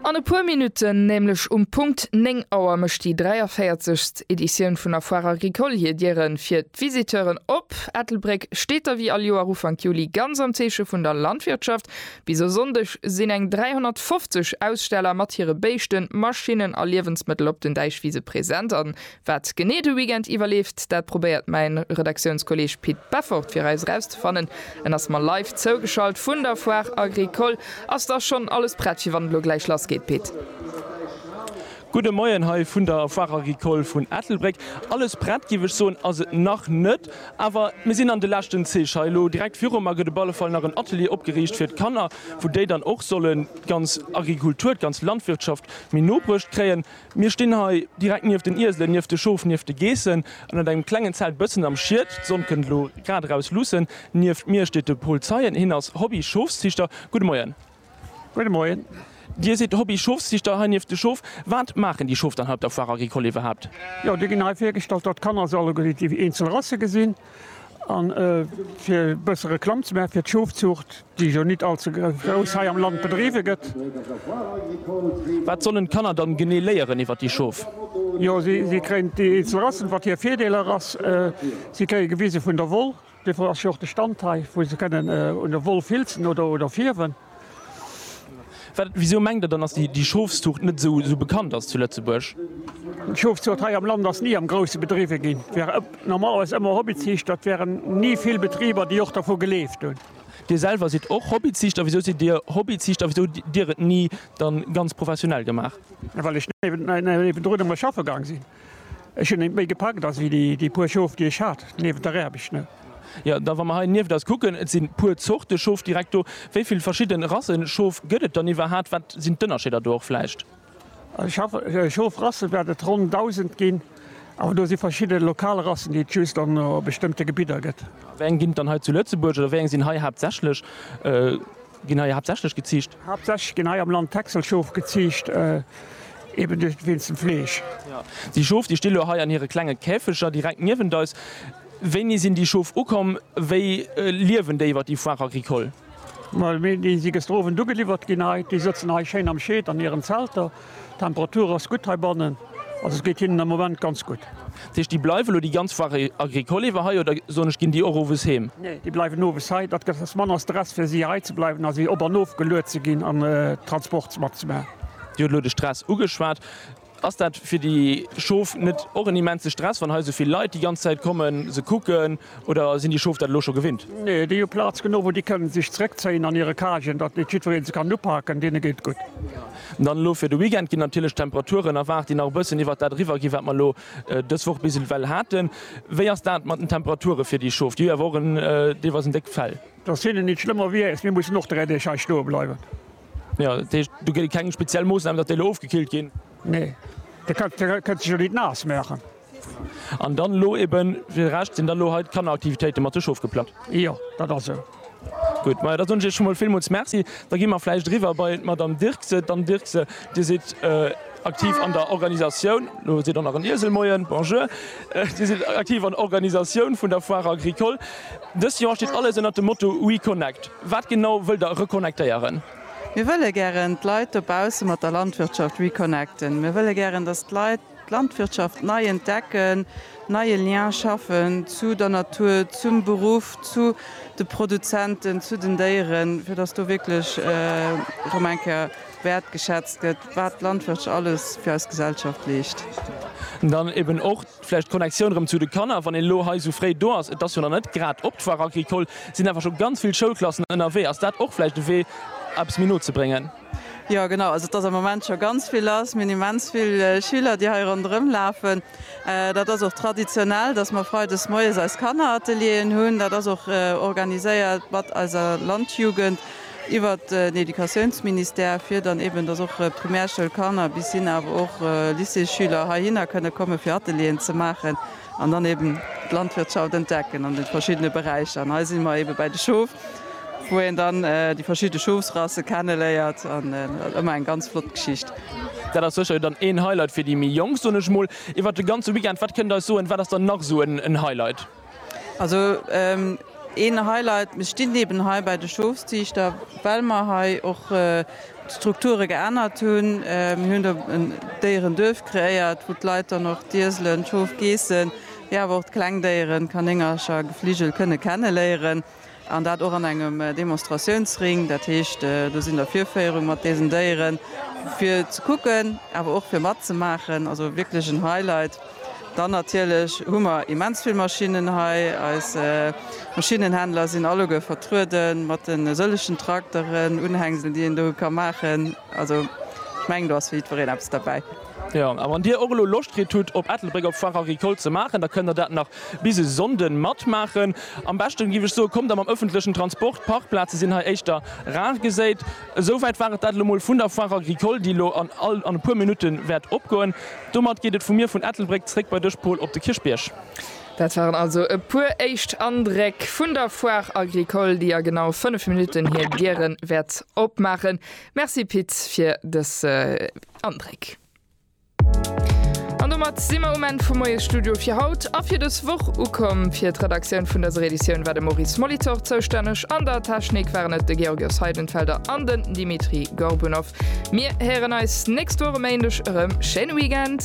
An e puer Minutten, nämlech um Punkt 9 Auer, mécht déi 43. Editioun vun der Foire Agricole hir Dieren fir d'Visiteuren op. Ettelbréck steet da wéi all Joer Ufank Juli ganz am Zeeche vun der Landwirtschaft. Bis e Sonndeg sinn eng 350 Aussteller mat hire Béischten, Maschinnen a Liewensmëttel op den Däichwise present. Wat genee de Weekend iwwerleeft, dat probéiert mäin Redaktiounskolleeg Pit Beffort fir eis erauszefannen. En ass mer live zougeschalt vun der Foire Agricole. Ass da schonn alles prett fir wann et elo gläich lass geet, Pit? Gudde Moien hei vun der Foire Agricole vun Ettelbréck. Alles prett géif ech soen ass et nach net, awer mir sinn an de leschten Zeeg hei. Elo direkt viru mer gëtt op alle Fall nach en Atelier opgeriicht fir d'Kanner, wou déi dann och solle ganz Agrikultur, d'ganz Landwirtschaft méi no bruecht kréien. Mir stinn hei direkt nieft den Ieselen, nieft de Schof, nieft de Geessen, ënnert engem klengen Zelt bëssen am Schied. D'Sonn kënnt elo grad eraus luussen. Nieft mir steet de Paul Zeien. Hien ass Hobby-Schofsziichter. Gudde Moien. Gudde Moien. Dir sidd Hobby-Schofsziichter hei nieft de Schof. Wat maachen déi Schof dann hei op der Foire Agricole iwwerhaapt? Jo, déi ginn hei virgestallt, datt d'Kanner se alleguerten déi eenzel Rasse gesinn. A fir e bësse Reklamm ze maachen fir d'Schofzuucht, déi jo nit all ze grouss hei am Land bedriwwe gëtt. Wat sollen d'Kanner dann genee léieren iwwert déi Schof? Jo, si kréien déi eenzel Rassen, wat hir Virdeeler ass. Si kréie gewise vun der Woll. Dofir ass jo och de Stand hei, wou se kënnen un der Woll filzen oder fierwen. Wisou mengt Der dann, dass déi Schofszuucht net esou bekannt ass zu Lëtzebuerg? D'Schofzuucht hei am Land ass ni am Grousse bedriwwe ginn. Et ware normalerweis ëmmer Hobbyziichter. Et waren ni vill Betriber, déi och dervu geleeft hunn. Dir selwer sidd och Hobbyziichter. Wisou sidd Dir Hobbyziichter a wisou hutt Dir et ni dann ganz professionell gemaach? Well ech niewendrun ëmmer schaffe gaang sinn. Ech hun eent méi gepackt as wéi déi puer Schof déi ech hat, niewent der Räbech ne. Jo da wa mer hei nieft eis kucken, et sin puer Zorte Schof direkt do. Wéi vill verschidden Rassen Schof gëtt et dann iwwerhat? Wat sin d'Ënnerscheeder do och vläicht? Also Schof Rassen wärt et ronn 1000 gin, awer do si verschidden lokal Rassen déi et just an bestëmmten Gebidder gëtt. Wéi eng gin et dann hei zu Lëtzebuerg oder wéi eng sin hei haaptsächlech? Ginn hei haaptsächlech geziicht. Haaptsächlech ginn hei am Land Texelschof geziicht, eben duerch wéinst dem Fleesch. Déi Schof, déi sti lo hei an hire klenge Käfeger direkt niewent eis. Wéini sinn déi Schof ukomm? Wéi liewen déi iwwer déi Foire agricole? Déi si gëschter Owend ugeliwwert ginn hei. Déi sëtzen hei schéin am Schied an hiren Zelter. D'Temperatur ass gutt heibannen, also et geet hinnen am Moment ganz gutt. Dat heescht, déi bleiwen elo déi ganz Foire agricole iwwer hei oder, soen ech, ginn déi och owes heem? Nee, déi bleiwen owes hei. Dat gëtt ass manner Stress fir si hei ze bleiwen a si op an of geluet ze ginn an Transports mat ze maachen. Dir huet elo de Stress ugeschwat. Ass dat fir déi Schof net och en immense Stress, wann hei esou vill Leit déi ganz Zäit kommen, se kucken? Oder sinn déi Schof dat elo scho gewinnt? Nee, déi hu Plaz genuch wou déi kënnen sech zeréckzéien an hire Cagen, datt net jiddwereen se kann upaken. Deene geet et gutt. Dann elo fir de Weekend ginn natierlech d'Temperaturen erwaart, déi nach e bëssen iwwert dat eriwwer ginn, wat mer elo dës Woch bis ewell haten. Wéi ass dat mat den Temperature fir déi Schof? Déi hu jo awer och en deelweis en déckt Fell. Et ass hinnen nitt schlëmmer wéi äis. Mir mussen och 3 Deeg hei stoe bleiwen. Jo, dat heescht, do gëtt et keng speziell Moossnamen, datt déi elo ofgekillt ginn? Nee, da kënnt se jo nitt naass maachen. An dann elo eben fir de Rescht sinn dann elo hei d'Kanneraktivitéite mat de Schof geplant? Jo, dat ass esou. Gutt, majo da soen ech Iech scho mol villmools Merci. Da gi mer vläicht eriwwer bei d'Madame Dirkse. D'Anne Dirkse, Dir sidd aktiv an der Organisatioun, elo seet och nach en Iesel Moien, bonjour, Dir sidd aktiv an der Organisatioun vun der Foire agricole. Dëst Joer steet alles ënnert dem Motto We connect. Wat genau wëllt Der reconnectéieren? Mir wëlle gären d'Leit dobausse mat der Landwirtschaft reconnecten. Mir wëlle gären, dass d'Leit D'Landwirtschaft nei entdecken, neie Lien schaffen zu der Natur, zum Beruff, zu de Produzenten, zu den Déieren, fir dass do wierklech erëm eng Kéier wäertgeschätzt gëtt, wat d'Landwirtschaft alles fir eis Gesellschaft leescht. Dann eben och vläicht d'Connectioun erëm zu de Kanner, wann een elo hei esou fréi do ass, et ass jo nach net grad op, d'Foire agricole, et sinn awer scho ganz vill Schoulklassen ënnerwee, ass dat och vläicht e Wee, eppes méi no ze bréngen? Jo genau, also et ass am Moment scho ganz vill lass. Mir hunn immens vill Schüler, déi hei ronderëm lafen. Dat ass och traditionell, dass mer freides moies eis Kanneratelierien hunn. Dat ass och organiséiert mat eiser Landjugend iwwer den Educatiounsministère, fir dann eeben, dass och Primärschoulkanner bis hin awer och Lycéesschüler heihinner kënne komme fir Atelierien ze maachen. an dann eben d'Landwirtschaft entdecken an de verschiddene Beräicher. An hei si mer ebe bäi de Schof, wou een dann déi verschidde Schofsrasse kenne léiert an ëmmer eng ganz flott Geschicht. Dat ass sécher dann een Highlight fir déi méi Jonk, soen ech mol. Iwwert de ganze Weekend, wat kënnt Der eis soen, wat ass dann nach esou en Highlight? Also een Highlight, mir stinn eben hei bäi de Schofsziichter, well mer hei och d'Strukture geännert hunn, mir hunn do en Déierenduerf kreéiert, wou d'Leit dann och d'Ieselen, d'Schof, Geessen, mee awer och d'kleng Déieren, Kanéngercher, Gefligel, kënne kenneléieren an dat och an engem Demonstratiounsring. Dat heescht, do sinn der Virféierung mat deesen Déieren, fir ze kucken, awer och fir matzemaachen, also wierklech en Highlight. Dann natierlech hu mer immens vill Maschinnen hei. Eis Maschinnenhändler sinn alleguer vertrueden mat de sëllegen Trakteren, Unhängselen, déi een do ka maachen. Also ech mengen, do ass fir jiddwereen eppes derbäi. Jo, a wann Dir och elo Loscht kritt hutt, op Ettelbréck op d'Foire Agricole ze maachen, da kënnt Der dat nach bis e Sonnden matmaachen. Am beschten, géif ech soen, kommt Der mam ëffentlechen Transport. D'Parkplaze sinn hei éischter rar geséit. Esouwäit war et dat elo mol vun der Foire Agricole, déi elo an e puer Minutte wäert opgoen. Domat geet et vu mir vun Ettelbréck zréck bei dech Paul op de Kierchbierg. Dat waren also e puer éischt Andreck vun der Foire Agricole, déi a genau 5 Minutten hir Dieren wäert opmaachen. Merci Pit fir dës Andréck. An domat si mer um Enn vum Moies Studio fir haut a fir dës Woch ukomm. Fir d'Redaktioun vun dëser Editioun war de Maurice Molitor zoustänneg. An der Technik waren et de Georgios Heidenfelder an den Dimitri Gorbunov. Mir héieren eis nächst Woch e Méindeg erëm. Schéine Weekend!